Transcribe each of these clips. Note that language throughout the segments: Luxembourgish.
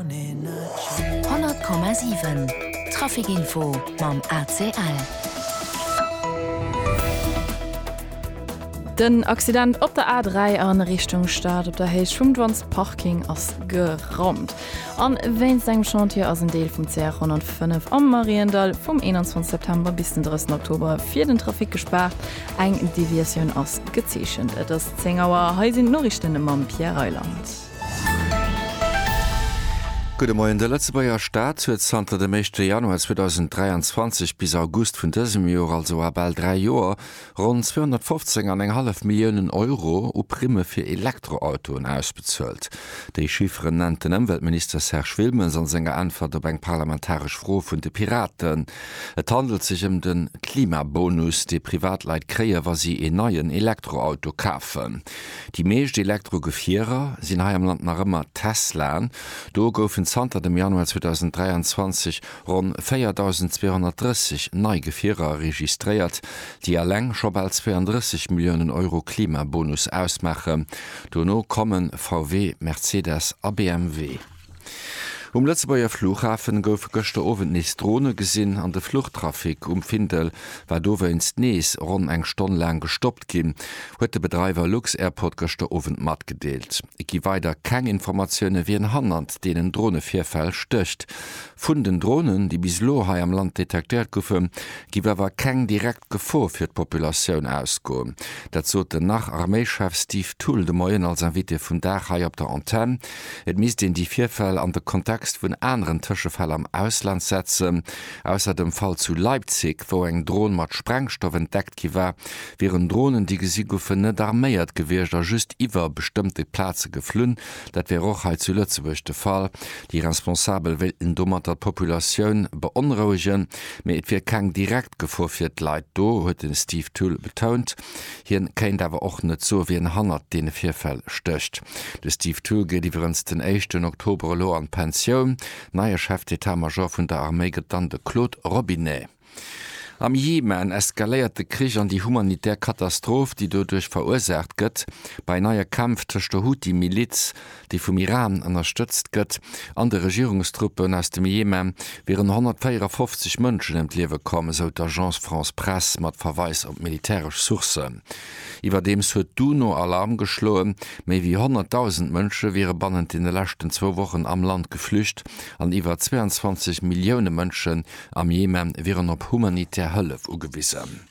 100,7 Trafic Info mam ACL. Den Accident op der A3 a Richtung Stad op der Héicht vum Dwan's Parking ass geraumt. A wéinst engem Chantier ass en Deel vum CR 105 am Mariendall vum 21 September bis den 30 Oktober fir den Trafic gespaart. Eng Deviatioun ass gezeechent. Et ass 10 Auer, hei sinn d'Noriichten mam Pierre Reyland. Gudde Moien, De Lëtzebuerger Staat huet zanter dem éischte Januar 2023 bis August vun dësem Jor, also a bal dräi Joer, ronn 215 an eng hallef Milliounen Euro u Primme fir Elektroautoen ausbezuelt. Déi Chifferen nennt den Ëmweltminister Serge Wilmes an senger Äntwert op eng parlamentaresch Fro vun de Piraten. Et handelt sech ëm de Klimabonus, dee Privatleit kréien, wa si een neien Elektroauto kafen. Déi meescht Elektro-Gefierer sinn hei am Land nach ëmmer Teslaen. Do goufen zanter dem Januar 2023 ronn 4.230 nei Gefierer registréiert, déi eleng scho bal 32 Milliounen Euro Klimabonus ausmaachen. Dono komme VW, Mercedes a BMW. Um Lëtzebuerger Flughafen goufe gëschter Owend nees Drone gesinn an de Fluchtrafic um Findel war dowéinst nees ronn eng Stonn laang gestoppt ginn, huet de Bedreiwer lux-Airport gëschter Owend matgedeelt. Et gi weider keng Informatioune wien hannert deenen Dronevirfäll stécht. Vun den Dronen, déi bis elo hei am Land detektéiert goufen, géif awer keng direkt Gefor fir d'Populatioun ausgoen. Dat sot den nach Arméischef Steve Thull de Moien als Invité vum Dag hei op der Antenn. Et misst een déi Virfäll an de Kontext vun aneren Tëschefäll am Ausland setzen. Ausser dem Fall zu Leipzig, wou eng Dron mat Sprengstoff entdeckt gi war, wieren Dronen, déi gesi goufen, net arméiert gewiescht a just iwwer bestëmmte Plaze geflunn. Dat wär och hei zu Lëtzebuerg de Fall. Déi Responsabel wéilten domatter d'Populatioun beonrouegen, mee et wier keng direkt Gefor fir d'Leit do, huet de Steve Thull betount. Hien kéint awer och net soe wien hannert deene Virfäll stécht. De Steve Thull geet iwwerens den éischten Oktober elo an d'Pensioun. Neie Chef d'Etat-Major vun der Arméi gëtt dann de Claude Robinet. Am Jemen eskaléiert de Krich an déi humanitär Katastroph, déi doduerch verursaacht gëtt, bei neie Kämpf tëscht der Houthi-Miliz déi vum Iran ënnerstëtzt gëtt, an de Regierungstruppen aus dem Jemen wieren 154 Mënschen ëm d'Liewe komm, esou d'Agence France-Presse mat Verweis op militäresch Sourcen. Iwwerdeems huet d'UNO Alarm geschloen, méi wéi 100.000 Mënsche wiere bannent deene leschten zwou Wochen am Land geflücht an iwwer 22 Millioune Mënschen am Jemen wieren op humanitär Hëllef ugewisen.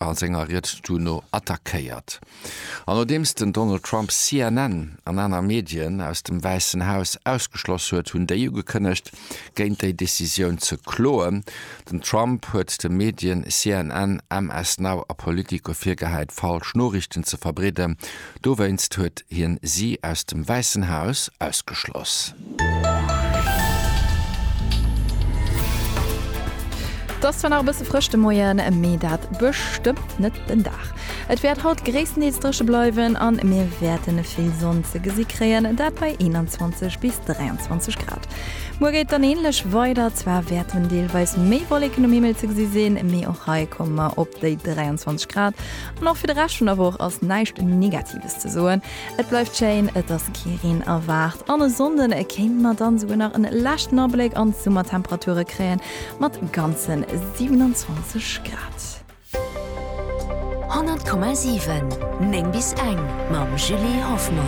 a senger Ried duerno attackéiert. An nodeems den Donald Trump CNN an aner Medien aus dem Wäissen Haus ausgeschloss huet, hunn déi ugekënnegt, géint déi Decisioun ze kloen. Den Trump huet de Medien CNN, MS Now a Politico virgehäit, falsch Noriichten ze verbreeden Dowéinst huet hien si aus dem Wäissen Haus ausgeschloss. Et ass zwar nach e bësse frësch de Moien, mee dat bestëmmt net den Dag. Et wäert haut gréisstendeels dréche bleiwen a mir wäerten vill Sonn ze gesi kréien, dat bei 21 bis 23 Grad. Muer geet dann änlech weider, zwar wäerten deelweis méi Wolleken um Himmel ze gesi sinn, mee och hei komme mer op déi 23 Grad. An och fir de Rescht vun der Woch ass näischt Negatives ze soen. Et bleift schéin, et ass kee Reen erwaart an e Sonnden kéinte mer dann esouguer nach en leschten Abléck an d'Summertemperature kréien, mat ganze 27 Grad. 100,7 9 bis eng mam Julie Hoffmann.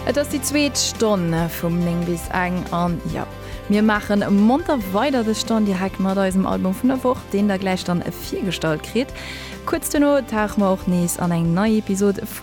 Et ass déi zweet Stonn vum 9 bis eng an jo. Mir maachen monter weider de Stand direkt mat eisem Album vun der Woch, deen der gläich dann virgestallt kritt. Kuerz duerno tauche mer och nees an eng nei Episod vu.